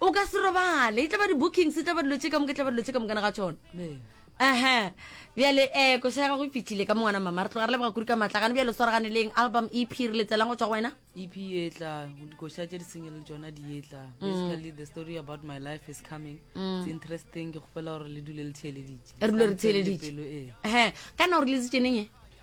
o ka se robale e tlaba di-bookings e tlaba dilo tse ka moka e tlaba dilo tse ka mokana ga tsona aha bjale um eh, kosa ya gago e fitlhile ka mongwana mama re tloga re leboga kuri ka matlagane bjale swaragane leng album e p re letselang go tswa go wena ep etla dikoša tse di sengele tsona di etla mm. basically the story about my life is coming mm. it's interesting ke kgopela gore le dule le theeleditse re dule re theeleditse ee. kana o re letsitseneng e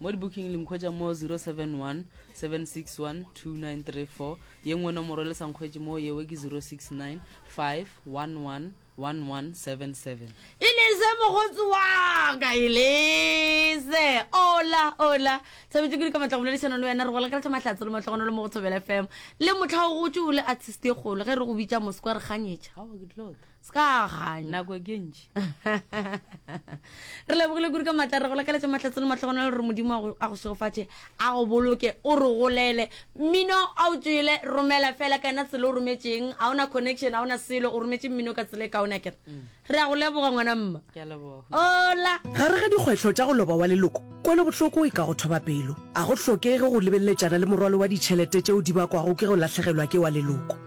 Mo dibooking le nkhwetša mo 071 761 2934, ye nngwe nomoro le sa nkhwetše mo yewe ke 069 511 1177. Elise mogotsi wa ka Elise ola ola thabetše kudu ka matla go boledišana le wena re gola keratla mahlatse le matlogono le mo go thobela fm le mohla o gotše o le artist e kgolo ge re go bitša mosekwa re kganyetša se ka ganya nako ke ntši re lebogile kuri ka matla re go lakaletse matlhatse le matlhogono le gore modimo a go- a go segofatše a go boloke o re golele mmino a o tswele romela fela kana tsela o rometšeng ga ona connection ga ona selo o rometse mmino ka tsela e kaona kere re a go leboga ngwana mma ke a leboga ola gare ga dikgwetlho tša go loba wa leloko kwelobohloko e ka go thoba pelo a go hlokege go lebeleletšana le morwalo wa ditšhelete tšeo di bakwago ke go lahlegelwa ke wa leloko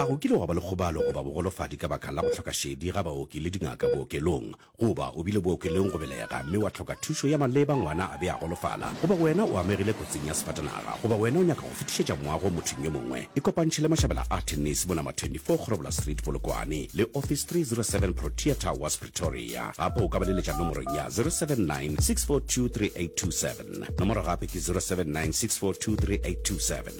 A go kile gwa ba le kgobalo goba bogolofadi ka baka la go hloka šedi ga baoki le dingaka bookelong? Goba o bile bookelong go belega mme wa hloka thušo ya maleba ngwana a be a golofala? Goba wena o amegile kotsing ya sefatanaga? Goba wena o nyaka go fetišetša moago go mothong yo mongwe? Ikopantšhe le mašabela a Tennis mo Nama 24 Kgorobola Street, Polokwane, le Office 307 Protea Towers, Pretoria. Gape o ka ba leletša nomorong ya 079 642 3827. Nomoro gape ke 079 642 3827.